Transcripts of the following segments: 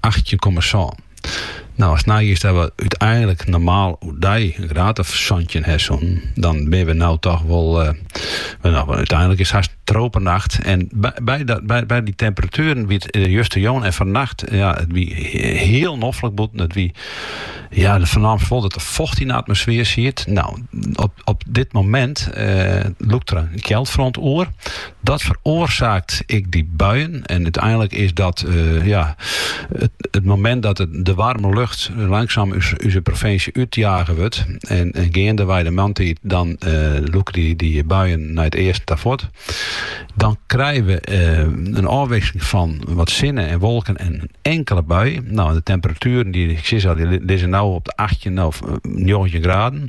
achttjin komma sân. Nou, ast neigiest dat we úteinlik normaal oerdei in graad of santjin ha soenen, dan binne we nou toch wol, uh, eh, nou, úteinlik is hast in tropenacht. En by, by, dat, by, by dy temperatueren wie it eh, justerjûn en fannacht, ja, it wie hiel noflik bûten. It wie, ja, do fernaamst wol dat der focht yn de atmosfear siet. Nou, op, op dit momint uh, lûkt der in kjeldfront oer. Dat feroarsaakt ek dy buien. En úteinlik is dat eh, ja, it, it momint dat it, de waarme lucht langsaam ús, ús provinsje útjage wurdt. En, en geandewei de moarntiid dan eh, lûke dy, dy buien nei it easten ta fuort. Dan krije we eh, in ôfwikseling fan wat sinne en wolken en in inkelde bui. Nou, de temperatueren dy, ik sei al, dy lizze nou op de 18 of 19 eh, graden.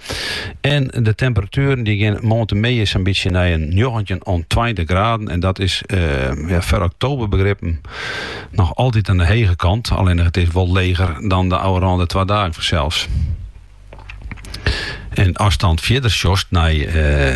En de temperatueren dy gean moarntemiddei sa'n bytsje nei in njoggentjin oant tweintich graden. En dat is eh, ja, foar oktoberbegrippen noch altyd oan de hege kant. Allinne it is wol leger dan de ôfrûne twa dagen fansels. En ast dan fierder sjochst nei eh,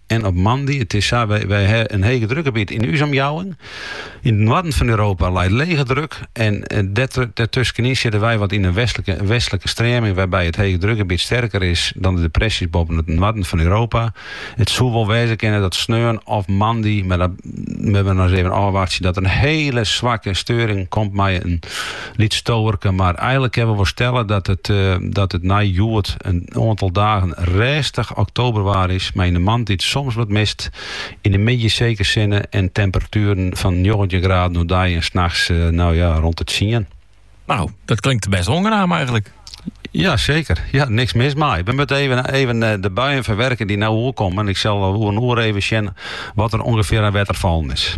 en op moandei. It is sa, wy ha in hegedrukgebiet yn ús omjouwing. Yn it noarden fan Europa leit lege druk en dêrtuskenyn sitte wy wat yn in westlike streaming wêrby't it hegedrukgebiet sterker is dan de depressjes boppen it noarden fan Europa. It soe wol wêze kinne dat sneon of moandei, mar dat moatte we noch ris even ôfwachtsje, dat der in hiele swakke steuring komt mei in bytsje wolken, mar eigenlik kinne we wol stelle dat it nei hjoed in oantal dagen rêstich oktoberwaar is, mei yn 'e moarntiid soms wat mist, yn de middei seker sinne en temperatueren fan njoggentjin graden oerdei en nachts no ja, rûn de tsien. Nou, dat klinkt best oangenaam eigenlik. Ja, seker. Ja, niks mis mei. We moatte even, even eh, de buien ferwurkje dy't nou oerkomme. Ik sil oer in oere even sjen wat der ûngefear oan wetter fallen is.